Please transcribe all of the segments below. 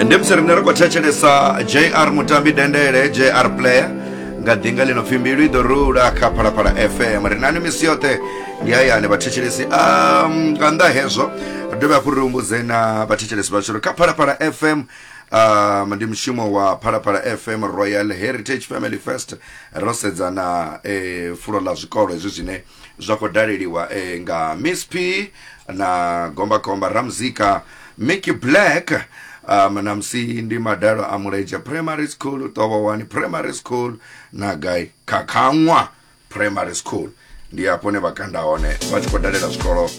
ndi musi rine ri khou thetshelesa jr mutambi dendele jr player nga ḓinga ḽi no pfhi mbilu i ḓo rula kha phalaphala fm ri nani misi yoṱhe ndi hayani vhathetshelesi um, nga nnḓa hezwo ri dovhe hafhu ri humbudze na vhathetshelesi vhashu uri kha phalaphala fm um, ndi mushumo wa phalaphala fm royal heritage family fest ro sedza na eh, fulo ḽa zwikolo hezwi zwine zwa khou daleliwa eh, nga miss p na gombakomba ramzika mickey black um, na musi ndi madalo a mulenzhe primary school tovhowani primary school na gai khakhaṅwa primary school ndi hafho ne vha kanda hone vha tshi khou dalela zwikolo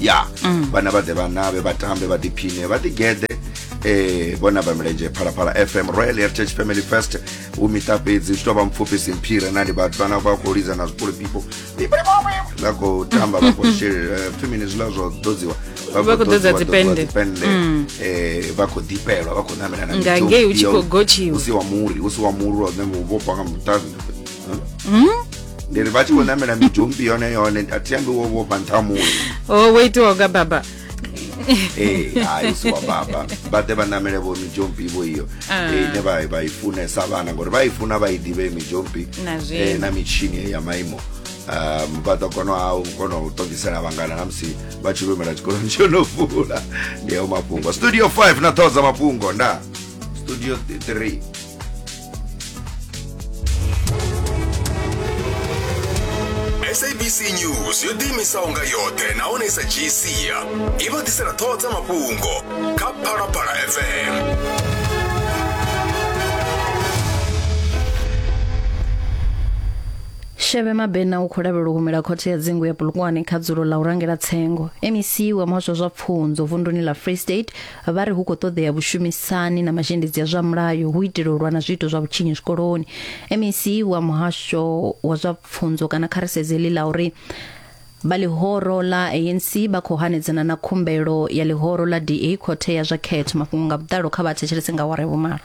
ya mm. vhana vha ḓe vhanavhe vha tambe vha ḓiphine vha ḓigeḓe eh bona ba milenzhe phalaphala fm royal heritage family fest u miṱa fhedzi zwi tou vha mpfufhi simphire na ndi vhathu vhana vha khou lidza na zwipuli pipo vha khou tamba vha khou shelela eh, femini zwiḽa zwo ḓodziwa vha khou ḓodza dzipende mm. eh, vha khou ḓipelwa vha khou ṋamela na ngangei u tshi khou gotshiwa u si wa muri u si wa muri wa ṋembo u vhofha nga muṱazi ndi ri vha tshi khou namela midzhumbi yone yone a thi ambi wo vhofha nṱha muno o wo itiwa nga baba Eh, hayi si wa baba vha ḓe vha namele vho midzhompi vho iyo Ah. Eh, ine vha vha i funesa vhana ngori vha i funa vha i ḓivhe midzhompi Na zwino. eh, na mitshini ya maimo Um, vha ḓo kona ha u kona u ṱongisela vhangana na musi vha tshi lumela tshikoloni tsho no vula ndi ao mafhungo studio 5 na ṱhoho dza mafhungo nda studio 3 sabc news yo ḓiimisaho nga yoṱhe nahone i sa dzhii sia i vha ḓisela ṱhoho dza mafhungo kha phalaphala fm sheve mabena u khou lavhelwa u humela khothe ya dzingu ya bulukwane kha dzulo ḽa u rangela tsengo mec wa muhasho wa zwa pfunzo vunduni ḽa free state Vha ri hu khou ṱoḓea vhushumisani na mazhendedzi a zwa mulayo hu itela u lwa na zwiito zwa vhutshinyi zwikoloni. MEC wa muhasho wa zwa pfunzo kana kha ri sedze ḽi ḽa uri vha ḽihoro ḽa ANC vha khou hanedzana na khumbelo ya ḽihoro ḽa DA khothe ya zwa khetho. Mafhungo nga vhuḓalo kha vha thetshelese nga awara ya vhumalo.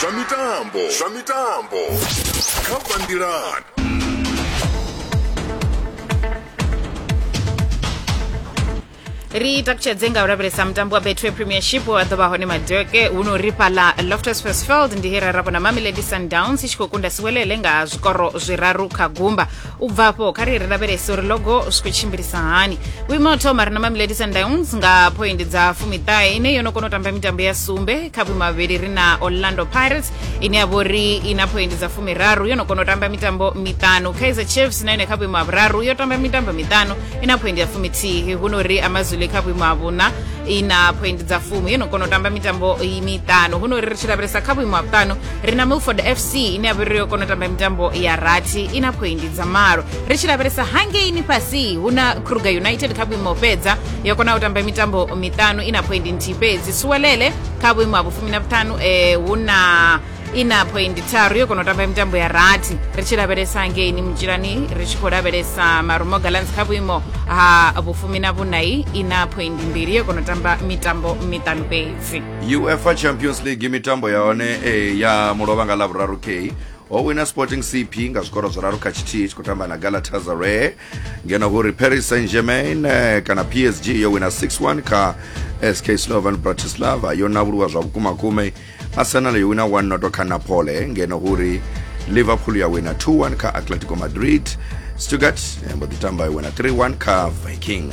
zwa mitambo zwa mitambo kha bandirani ri takutshedze nga u lavhelesa mutambo wa betway premiership wa ḓo vha hone madeke huno ri fhaḽa loftus versfeld ndi he ra ra vhona mamelodi sundowns i tshi khou kunda siwelele nga zwikoro zwiraru kha gumba u bva afho kha ri ri lavhelese uri logo zwi khou tshimbilisa hani vhuimo ha u thoma ri na mamelodi sundowns nga phoindi dza fumiṱahe ine yo no kona u tamba mitambo ya sumbe kha vhuimo vhavhili ri na orlando pirates ine ya vho ri i na phoindi dza fumiraru yo no kona u tamba mitambo miṱanu kaizer chiefs na yone kha vhuimo ha vhuraru yo tamba mitambo miṱanu i na phoindi ya fumithihi hu no ri amazulu kha vhuimo ha vhuṋa i na phoindi dza fumi yo no kona u tamba mitambo miṱanu hu no ri ri tshi lavhelesa kha vhuimo ha vhuṱanu ri na milford fc ine ya vhori yo kona u tamba mitambo ya rathi i na phoindi dza malo ri tshi lavhelesa hangeini fhasi hu na kruger united kha vhuimo fhedza yo kona u tamba mitambo miṱanu i na phoindi nthihi fhedzi suwelele kha vhuimo ha vhufumi na vhuṱanu eh, hu na i na phoindi tharu yo kona u tamba mitambo ya rathi ri tshi lavhelesa hangeini mutshilani ri tshi khou lavhelesa marumo galans kha vhuimo ha vhufumi na vhunai i na phoindi mbili yo kona u tamba mitambo miṱanu fhedzi uefa champions league mitambo ya hone eh, ya mulovha nga lavhuraru k ho wina sporting cp nga zwikoro zwiraru kha tshithihi tshi khou tamba na galatasaray ngeno huri paris saint germain eh, kana psg yo wina 61 kha sk slovan bratislava yo navhuluwa zwa vhukuma kume arsenal yo wina 1 noto kha napole ngeno huri liverpool ya wina 2-1 kha atletico madrid stuttgart yambo ḓi tamba yo wina 3-1 kha viking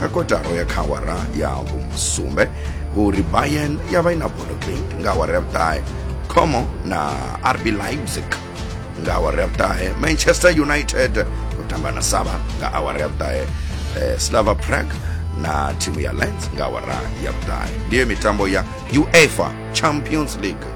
Kha kotara ya kha awara ya vhusumbe uri Bayern ya vha i na bodo Genk nga awara ya vhuṱahe, Como na RB Leipzig nga awara ya vhuṱahe, Manchester United u tamba na Saba nga awara ya vhuṱahe, eh, Slava Prague na thimu ya Lens nga awara ya vhuṱahe. Ndiyo mitambo ya UEFA Champions League.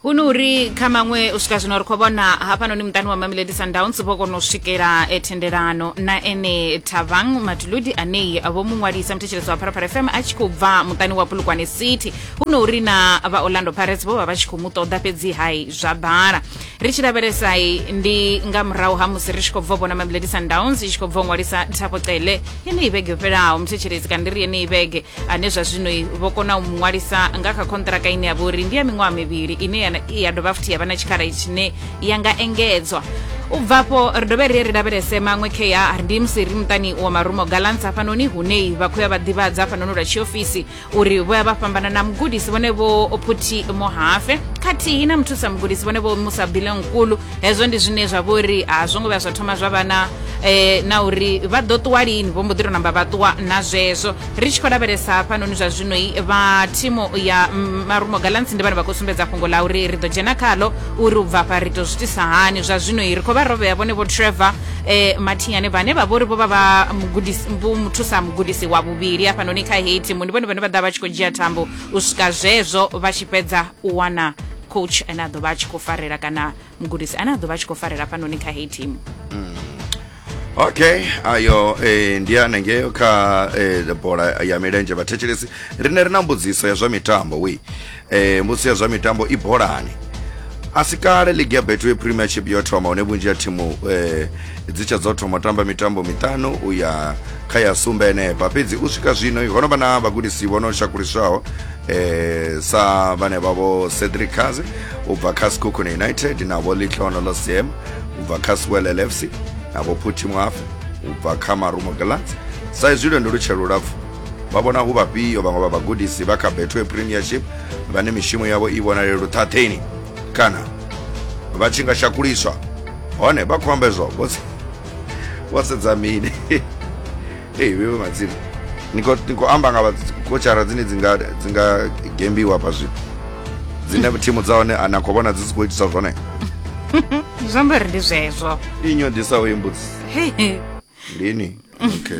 hu no uri kha maṅwe u swika zwino ri khou vhona hafhanoni muṱani wa mamelodi sundowns vho kona u swikela eh, thendelano na ene thavang matuludi anei vho mu ṅwalisa muthetshelesi wa pharapara fm a tshi khou bva muṱani wa pulukwane city hu no uri na vha orlando pirates vho vha vha tshi khou mu ṱoḓa fhedzi hai zwa bala ri tshi lavhelesai ndi nga murahu ha musi ri tshi khou bva u vhona mamelodi sundowns i tshi khou bva u ṅwalisa thapo cele yeneyi vhege yo fhelaho muthetshelesi kana ndi ri yeneyi vhege ane zwa zwino vho kona u mu ṅwalisa nga kha khonṱiraka ine ya vha uri ndi ya miṅwaha mivhili ine ya dovha futhi ya vha na tshikhala tshine ya nga engedzwa u bvafho ri dovhe ri ri lavhelese maṅwe kea ndi musi ri muṱani wa marumo galants hafhanoni hunei vha khoya vha ḓivhadza hafhanoni lwa tshiofisi uri vho ya vha fhambana na mugudisi vhone vho phuthi mohafe khathihi na muthusa mugudisi vhone vho musa bilenkulu hezwo ndi zwine zwa vho ri a zwo ngo vhuya zwa thoma zwa vha na eh, na uri vha ḓo ṱuwa lini vho mbo ḓi to namba vha ṱuwa na zwezwo ri tshi khou lavhelesa hafhanoni zwa zwinoi vha thimu ya marumo galants ndi vhane vha khou sumbedza fhungo ḽa uri ri ḓo dzhena khalo uri u bva fha ri to zwitisa hani zwa zwinoi ri khou vha rovhea vhone vho trevor eh, mathinyane vhane vha vhori vho vha vha muthusa mugudisi wa vhuvhili hafhanoni kha heyi thimu ndi vhone vhane vha ḓa vha tshi khou dzhia thambo u swika zwezwo vha tshi fhedza u wana coach ane a ḓo vha a tshi khou farela kana mugudisi ane a ḓo vha a tshi khou farela hafhanoni kha heyi thimu mm. okay ayo eh, ndi anengeyo kha eh, bola ya milenzhe vhathetshelesi rine ri na mbudziso ya zwa mitambo wi eh, mbudziso ya zwa mitambo i bolani a si kale ligi ya betway premiership yo thoma hune vhunzhi ya thimu eh, dzi tsha dzo thoma tamba mitambo miṱanu u ya kha ya sumbe enepa fhedzi u swika zwino ho no vha na vhagudisi vho no shakuliswaho eh sa vhane vhavho cedric kaze u bva kha skukhune united na vho litlono losiem u bva kha swelel fc na vho phuthi mwafe u bva kha marumo galants sa izwi lwendo lu tshe lulapfu vha vhona hu vhafhio vhaṅwe vha vhagudisi vha kha betway premiership vhane mishumo yavho i vhonale luṱhaṱheni kana vha tshi nga shakuliswa hone vha khou amba izwo vho sedza mini ei veve madzimu nikoamba nga kochara dzine dzinga gembiwa pa zvipo dzine thimu dza hone na khou vhona dzi si khou itisa zwone zwi amba ri ndi zwezwo ndi nyodisa uyi mbudzi ndini okay